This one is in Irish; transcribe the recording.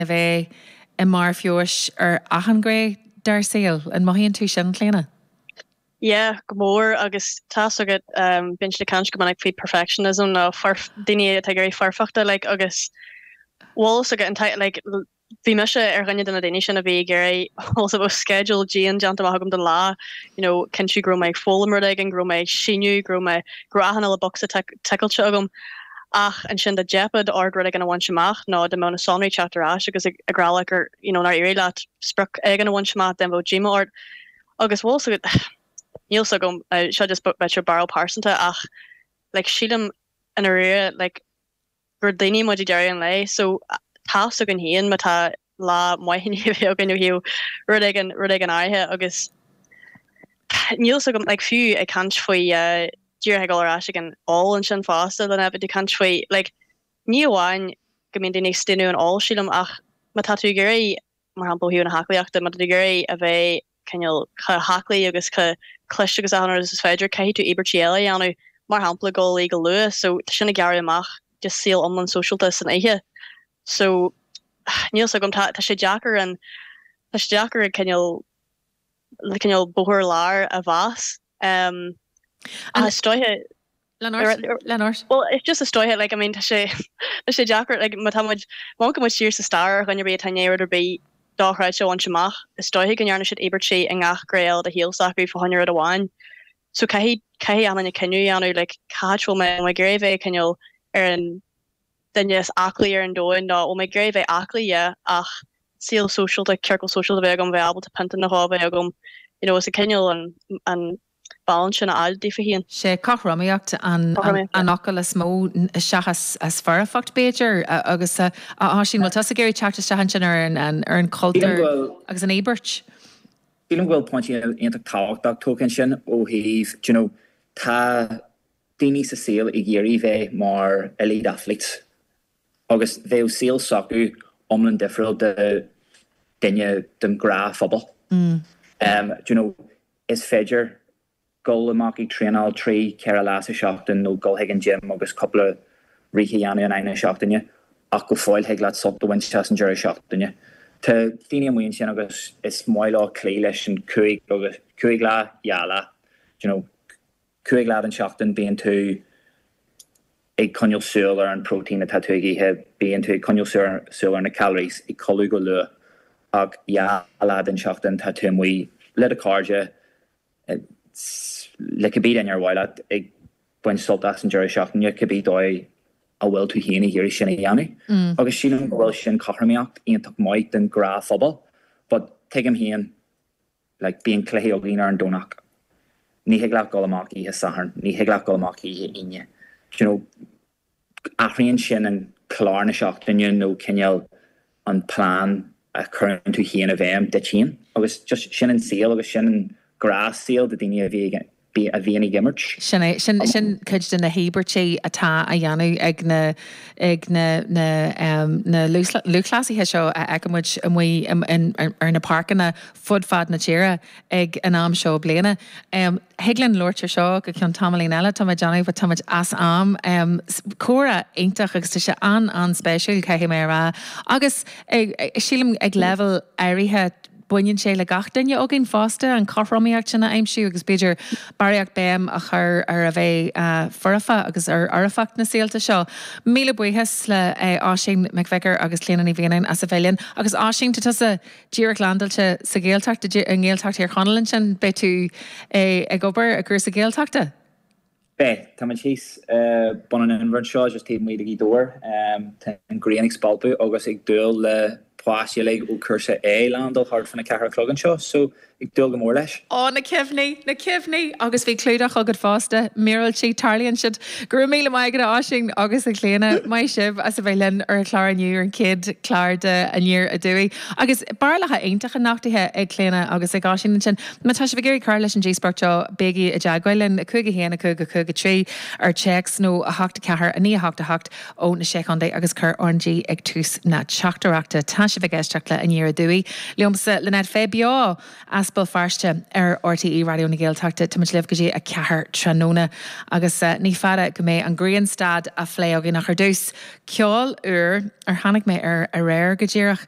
a bheith i mbarr feabhais ar achan ghné dár saol. An mothaíonn tú sin, Clíona? Yeah, go mór. Agus tá's agat, bíonn siad ag caint go minic faoi perfectionism nó daoine atá ag iarraidh foirfeachta, like, agus bhfuil fhios agat, ag an am, like, bhí mise ar dhuine de na daoine sin a bhí ag iarraidh, bhfuil fhios agat, sceideal dian déanta amach agam don lá, you know, cinntiú go raibh mé ag foghlaim rud éigin, go raibh mé ag síniú, go raibh mé, go raibh achan bocsa ticeáilte agam ach ansin dá dteipfead ort rud éigin a bhaint amach nó dá mbeadh na sonraí ag teacht ar ais agus ag rá leat gur, you know, nár éirigh leat sprioc éigin a bhaint amach bheadh díomá ort agus bhfuil 's agat, níl 's agam, seo just b'fhéidir barúil phearsanta ach like sílim i ndáiríre like, gur daoine muid ag deireadh an lae so tá's againn féin má tá lá maith i ndiaidh a bheith againn ó thaobh rud éigin, rud éigin áirithe agus níl fhios agam like fiú ag caint faoi eh díreach ag dul ar ais ag an ól ansin fosta Niamh ag caint faoi like ní amháin go mbíonn daoine ag staonadh ón ól sílim ach má tá tú ag iarraidh mar shampla ó thaobh na haclaíochta má tá tú ag iarraidh a bheith cineál chomh haclaí agus chomh cliste agus achan rud is féidir, caithfidh tú íobairtí eile a dhéanamh, mar shampla gabháil a luí go luath, so tá sin ag gearradh amach just saol iomlán sóisialta san oíche. So níl 's agam, tá sé deacair an, tá sé deacair ag cineál, cineál bóthar láir a aimsiú. Um, An stoithe Lean ort, lean ort. Well, it's just a stoiche, like, I mean, tá sé, tá sé deacair, like, má tá muid, má amharcann muid siar sa stair ar dhuine ar bith a bhain aon rud ar bith dochreidte a bhaint amach, is dóichí go ndearna siad íobairtí i ngach gné eile de shaol s'acu fá choinne rud amháin. So caithfidh, caithfidh achan duine cinneadh a dhéanamh, like, cad é, bhfuil mé, bhfuil mé ag iarraidh a bheith cineál ar an duine is aclaí ar an domhan, nó bhfuil mé ag iarraidh a bheith aclaí, yeah, ach saol sóisialta, ciorcal sóisialta a bheith agam, a bheith ábalta pionta nó dhó a bheith agam, you know, agus cineál an, an, balance sin a fháil daofa féin. Sé cothromaíocht an focal is mó, seachas foirfeacht b'fhéidir, agus a Oisín, bhfuil tusa ag iarraidh teacht isteach ansin ar an chultúr agus an íobairt? Sílim go bhfuil pointí iontach tábhachtach tógtha ansin ó thaobh, you know, tá daoine sa saol ag iarraidh bheith mar elite athletes agus bheadh saol s'acu iomlán difriúil do dhuine den ghnáthphobal. You know, Is féidir dul amach ag traenáil trí, ceithre lá sa seachtain nó dul chuig an gym agus cúpla rith a dhéanamh in aghaidh na seachtaine ach go fóill thig leat sult a bhaint as an deireadh seachtaine. Tá daoine amuigh ansin agus is maith leo cloí leis an cúig, cúig lá, dhá lá, d'you know. Cúig lá den seachtain bíonn tú ag coinneal súil ar an protein atá tú ag ithe, bíonn tú ag coinneal súil ar na calories, ag codladh go luath, ach dhá lá den seachtain tá tú amuigh le do cairde, le cibé duine ar mhaith leat, ag baint sult as an deireadh seachtaine, cibé dóigh a bhfuil tú féin ag iarraidh sin a dhéanamh. Agus sílim go bhfuil sin cothromaíocht iontach maith don ghnáthphobal, but tuigim féin, like, bíonn cluichí againn ar an Domhnach, ní thig leat dul amach oíche Sathairn, ní thig leat dul amach oíche Aoine, d'you know, athraíonn sin an clár na seachtaine nó cineál an plean a chuireann tú féin i bhfeidhm duit féin agus just sin an saol agus sin an gnáthshaol do dhaoine a bhí ag an a bhíonn ag imirt. Sin é. Sin cuid de na híobairtí atá á dhéanamh ag na lúthchleasaithe seo a fheiceann muid amuigh ar na páirceanna fud fad na tíre ag an am seo bliana. Thig linn labhairt ar seo go ceann tamaillín eile, tá mé ag déanamh, but tá muid as am. Comhrá iontach agus tá sé an-an-spéisiúil, caithfidh mé a rá, agus sílim ag leibhéal áirithe, Baineann sé le gach duine againn fosta an chothromaíocht sin a aimsiú agus b'fhéidir barraíocht béim a chur ar a bheith foirfe agus ar fhoirfeacht na saolta seo. Míle buíochas le hOisín Mac Fhiachra agus Clíona Ní Mhianáin as a bheith linn. Agus Oisín, tá tusa díreach landáilte sa Ghaeltacht, i nGaeltacht Thír Chonaill ansin, beidh tú ag obair i gcúrsa Gaeltachta? Beidh. Tá mé thíos i mBun an Inbhir anseo just taobh amuigh de Ghaoth Dobhair. Tá an ghrian ag spalpadh agus ag dúil le páistí uilig ó chúrsa A leaindeáil thart faoina ceathair a chlog anseo so ag dúil go mór leis. Ó, na cuimhní, na cuimhní! Agus bhí clúdach agaibh fosta, míorúiltí, tarlaíonn siad. Go raibh míle maith agat a Oisín agus a Chlíodhna, maith sibh as a bheith linn ar an chlár inniu, ar an chéad chlár de Aniar Aduaidh. Agus barúlacha iontacha nochtaithe ag Clíodhna agus ag Oisín ansin. Má tá sibh ag iarraidh cur leis an díospóireacht seo, bígí i dteagmháil linn, 5 1 5 5 3 ar téacs nó 8 4 9 8 8 ó na Sé Chontae agus cuir RnG ag tús na teachtaireachta. Tá sibh ag éisteacht le Aniar Aduaidh liomsa, Lynette Fay, beo as Béal Feirste ar RTÉ Raidió na Gaeltachta. Táimid libh go dtí a ceathair tráthnóna agus ní fada go mbeidh an Grianstad á phlé againn ach ar dtús, ceol úr ar tháinig mé air aréir, go díreach.